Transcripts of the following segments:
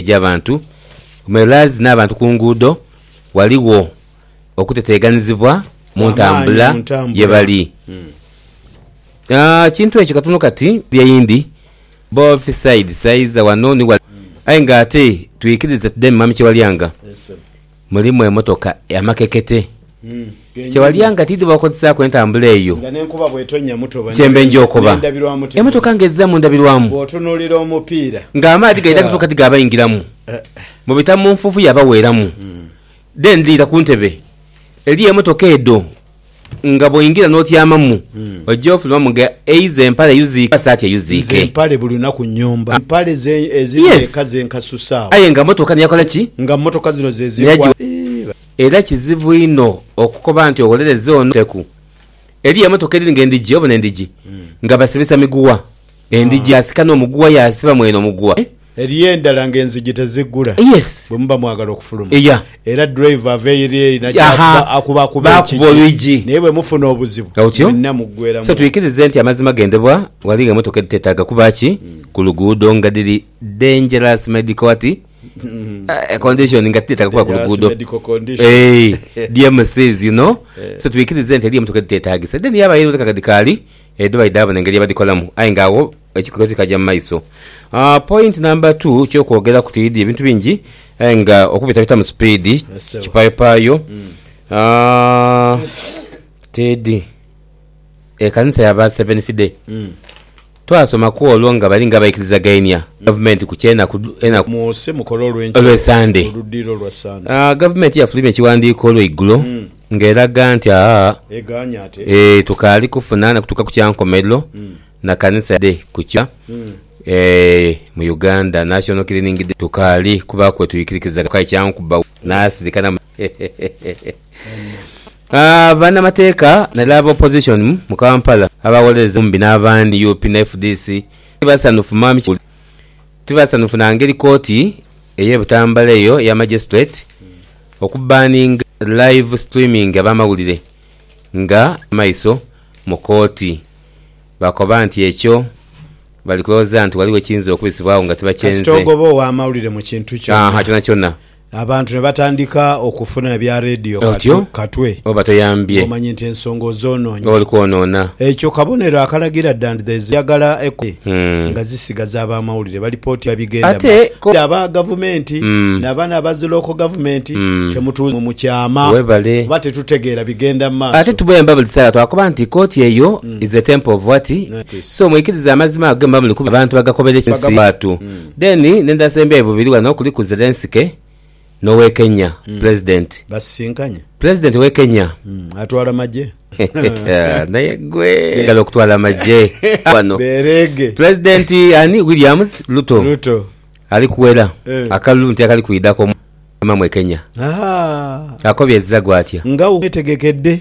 egy'abantu ku meralds n'abantu ku nguudo, ghaligho okuteteeganizibwa mu ntambula ye bali. Ekintu ekyo katono kati bye eyindi both sides, aidha wano ni wale. Aye nga ate twikirize tudeme Mwami Kyewalyanga. Mulimu emotoka amakekete kye walya nga tidho bakozesaaku entambula eyo. Kyembe nja okoba emotoka nga edhiza mu ndabirwamu nga amaadhi gaidha kutuuka ti gaabaingiramu mbu bita mu nfuufu yaabaweeramu. Then liira ku ntebe. Eliyo emotoka edho Nga bw'oingira n'otyamamu, oja ofulumamu nga eize empale eyuziike oba saati eyuziike. Nze mpale buli lunaku nnyomba. Empale ze eziri eka ze nkasusaawo. Aye nga mmotoka niyo yakola ki? Nga mmotoka zino ze zinkwa. Era kizibu inho okukoba nti owolereza ono. Teku. Eriyo emotoka edhiri nga endhigi, obona endhigi nga basibisa miguwa. Endhigi asika n'omuguwa yaasiba mwene omuguwa. Eriyo endala nga enzigi teziggula Yes. bwe muba mwagala okufuluma Yeah. era driver ava eyiri eri naja Aha. akuba akuba akuba Baakuba ekigi olwigi. naye bwe mufuna obuzibu Nga otyo? mwenna muggwera So mu. twikirize nti amazima gendebwa ghali nga emotoka edhitetaaga kuba ki ku luguudo nga dhiri dangerous medical ati eh, condition nga tidhetaaga kuba ku Dangerous luguudo. medical condition. Eeh, DMCs you know. So twikirize nti eriyo emotoka edhiteetaagisa then yabaayo endala nga dhikaali Edho baidha bona engeri yebadhikolamu aye nga agho ekikoto kikaja mu maiso. Point number two ekyokwogeraku tidhi ebintu bingi aye nga okubitabitamu sipiidi kipayopaayo tidhi. Ekanisa ya ba Seventh Day twasomaku olwo nga bali nga abaikirizaghainia gavumenti ku kyenaku olw'esande. Gavumenti yafulumya ekiwandiiko olweigulo. Ng'eraga nti a e tukaali kufuna na kutuuka ku kya nkomerero na kanisa dhe ku kya e mu Uganda, National Cleaning Day, tukaali kubaaku we twikirikiza ghoka ekya nkuba n'asirika na a banamateeka naire aba opposition mu Kampala abawolereza Mumbi n'abandi nup na fdc ti basanhufu mami Kiguli ti basanhufu na ngeri kooti eye Butambala eyo eya magistrate Oku banning live streaming abamawulire nga maiso mu kooti bakoba nti ekyo bali kulowooza nti waliwo ekiyinza okubisibwa agho nga tibakyenze. Kasita ogoba owamawulire mu kintu kyona, kyonakyona, abantu ne batandika okufuna ebya radio otyo katwe oba toyambye ng'omanyi nti ensonga ozonoonye. Oba oli kwonoona. Ekyo kabonero akalagira dda nti there's endagala ekola nga Sigaza abamawulire balipotia bigenda mu Ate ko. aba gavumenti na bano abazi local government temutuuza mu mukyama Webale. kuba tetutegeera bigenda mu Ate maaso. tubwemba buli kiseera twakoba nti kooti eyo is a temple of what? Justice. So mwikirize amazima ago gemba muli kuba abantu bagakobera ekyo si Bagamu. watu. Then nendala sembyayo bubiri wano kuliku Zelensky. n'ow'e Kenya, Pulezidenti. Basisinkanye. Pulezidenti w'e Kenya. Atwala magye. Naye gwe! Ngalo okutwala amagye wano. Beereege. Pulezidenti ani? William Ruto. Ruto. Ali kuwera akalulu nti akali kwidha ku Omwami e Kenya. Ahaa. Akobye Zzagu atya? Nga wetegekedde.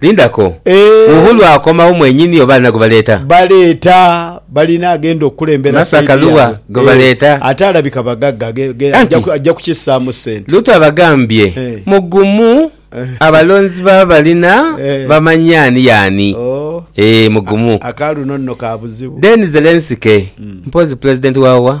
Linda ko. Eeh. Uhuru akomawo mwenyini oba alina gwebaleeta? Baleeta. Balina agenda okukulembera side yaabwe. Masaka Lugha gwebaleeta? Eeh. Ate alabika bagagga ge, Anti. ajja kukissaamu ssente. Luutu abagambye Eeh. mugumu abalonzi baba balina Eeh. bamanye ani y'ani. Ooh. Eeh mugumu. Aka luno nno ka buzibu. Then Zelensky mpozzi Pulezidenti wa wa?